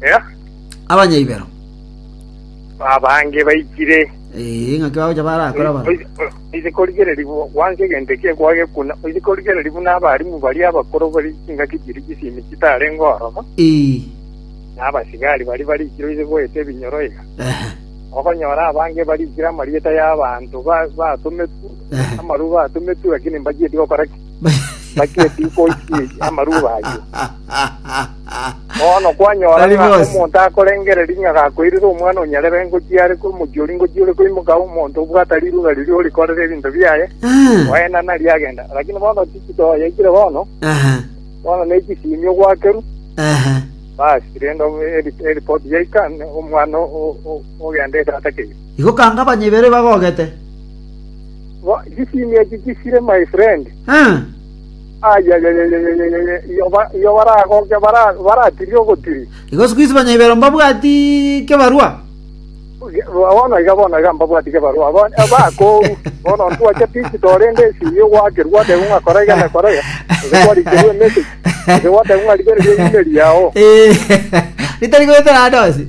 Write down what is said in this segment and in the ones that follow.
Eh, abanyaibero abange baikire Eh, ng'aki bagocha barakora baro oise korigereria bu- gwansa egento eki ekwagekuna oise korigereria buna abarimu baria abakoro bari chingaki chiri chisimi chitarenge oromo Eh, na abasigari bari barikire oise goeta ebinyoro iga ehe, okonyora abange barikire amarieta y'abanto ba- batometwe ehe. amaru batometwe lakini mbachieti gokora ki Naki eki nkoisirie amaruba ayio. Bono kwanyora Tari ng'a bosi. omonto akorengereria ng'a gakoirire Omwana o Nyarebe ngochia are korwa omochie oria ngochia ore koimoka omonto obwate riruga riria orikorera ebinto biaye, Ah, oena nario agenda. Lakini bono chikito yaikire bono, aha, bono ne chisimi ogwakerwa, aha. basi rende eri- eripoti yaika ne- omwana o- o- o- ogenda etata keire. Igo kanga abanyebere bagogete. Chisimia echi chisire my friend. Iyo baragoke baratirie ogotiri. Igo sikuisi banyaibero mbabwati kebarua. Bono iga bono iga mbabwati kebarua. Bakoru. Bono ntwache digital rende esimi ogwakerwa goteba ng'a kora iga na kora iga. Gose kwarikerwa emessage. Gose gwatebwa ng'a rigereria email yao. Ritari goetera ande onsi.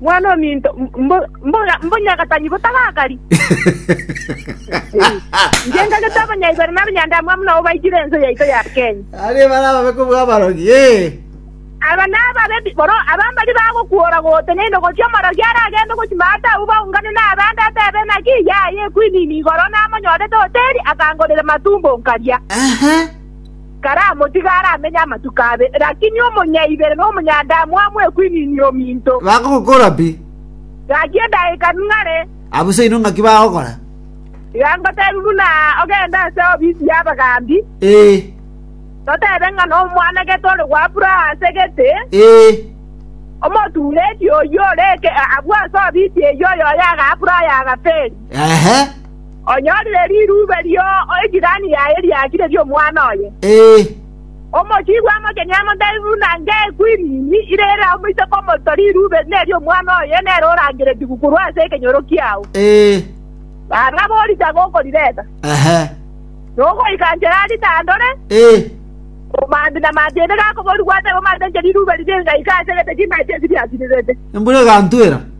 Mwana ominto, mbo- mboga- mbonyagatani botagakari. Inche ngagete abanyaigwere na abanyandaamwamu nabo baigire ense yaito ya Kenya. Aria ebara ababe kobua abarogi, ee. Aba nababe bi- boro aba mbari bagokuora goteneine gochia omorogi aragende gochima ata abwo baungane nabande atebe naki yaye ekwinini igoro namonyorete hoteri akangorera matumbo nkaria. Ehe. karamotige aramenye amatuko abe, lakini omonyaibere na omonyadamu amwekwininie ominto. Bagogokora pi. Gaki edageka ning'are. Abwo se inwe ng'aki bagokora? Iga ngotebi buna ogende ase ofisi y'abagaambi, Ee, totebe ng'a nomwanagete ore gwabura ase egete, ee. omotuureti oyio ore eke- abwo ase ofisi eyio oyoyaga abura oyo agaferi. Ehe. Onyorire rirube rio ejirani yaye riakire ri'omwana oye. Omochigu amo kenyene amotebi buna ng'ekwinini ire ere omoiseke omoto, rirube neri'omwana oye nere orangeretigwe korwa ase ekenyoro kiao. Barabwo borisa gokorireta, nogoika nchera ritandore, omanti na manti ende gakoborigwa atebe, Omatenche rirube riria ingaika ase egete chimache eki riasirirete.